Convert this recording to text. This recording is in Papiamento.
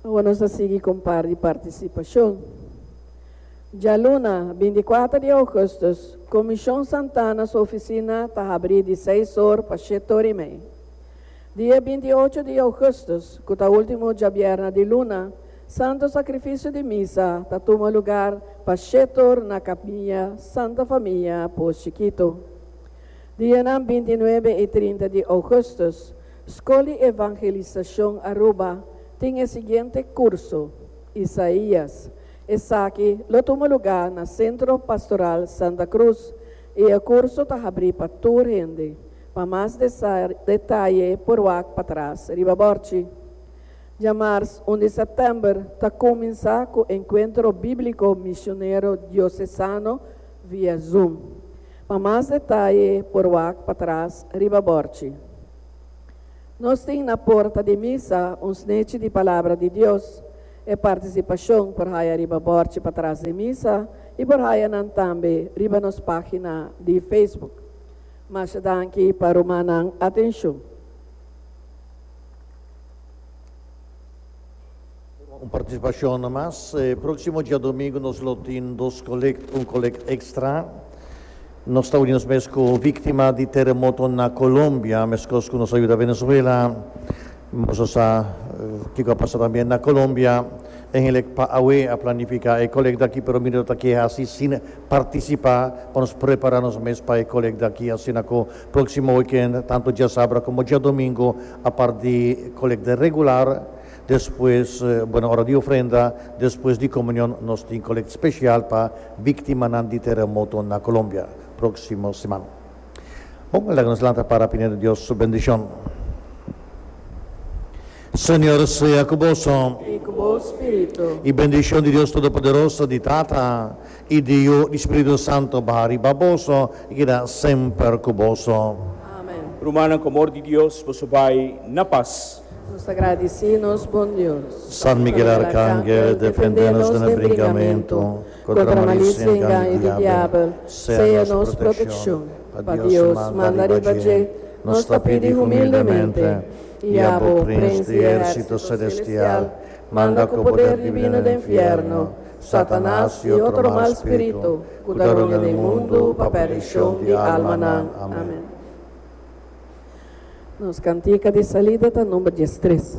Awa nos ta sigui con par di participacion. Djaluna, bin di cuater di augustus, Comision Santana su oficina ta habri di seis or pa shiet or y mei. Di e bin di ocho di augustus, cu ta ultimo djabierna di luna, Santo Sacrificio di Misa ta tuma lugar pa shiet or na Capilla Santa Familia Poos Chikito. Dianan binti nuebe y trinta di augustus, Skol di Evangelisashon Aruba tin e siguiente kurso, Isaías. Esaki lo tuma lugá na Sentro Pastoral Santa Cruz i e kurso ta habrí pa tur hende. Pa mas detaye por wak patras riba bòrchi. Dja mars un di sèptèmber ta kuminsá ku Encuentro Bíblico Misionero Diosesano via Zoom. Pa mas detaye por wak patras riba bòrchi. Nos tin na porta di misa un snechi di Palabra di Dios. E partisipashon por haya riba bòrchi patras den misa i por haya nan tambe riba nos página di Facebook. Masha danki pa ruma nan atenshon. Un participacion namas. Proximo diadomingo nos lo tin dos collect, un collect extra. Nos ta uni nos mes cu victima di terremoto na Colombia, mescos cu nos a yuda Venezuela. Nos a sa kico a pasa tambe na Colombia. E hende pa awe a planifica e collect aki, pero mi no ta ke haci sin participa pa nos prepara nos mes pa e collect aki. Asina cu proximo weekend, tanto diasabra como diadomingo, apart di collect regular, Despues, bo na ora di ofrenda, despues di komunion nos tin kolekt spesial pa biktimanan di teremoto na Kolombia próksimo siman. Bon, laga nos lanta para pidi na Dios su bendishon. Señor sea ku boso. I ku bo spiritu. I bendishon di Dios Todopoderoso, di Tata. I Diu di Spiritu Santu baha riba boso i keda semper ku boso. Amen. Rumannan, ku amor di Dios, boso bai na pas. Nos ta gradisí nos Bon Dios. San Miguel Arkangel, defendé nos den e brinkamentu, kontra malicia i engaño di diabel, sea nos protekshon. Pa Dios manda riba dje, nos ta pidi humildemente, i abo, Prins di ehérsito selestial, manda ku poder dibino den fièrnu, Satanas i otro mal spiritu ku ta rònga den mundu pa perdishon di almanan. Amèn. Nos kantika di salida ta number diestres.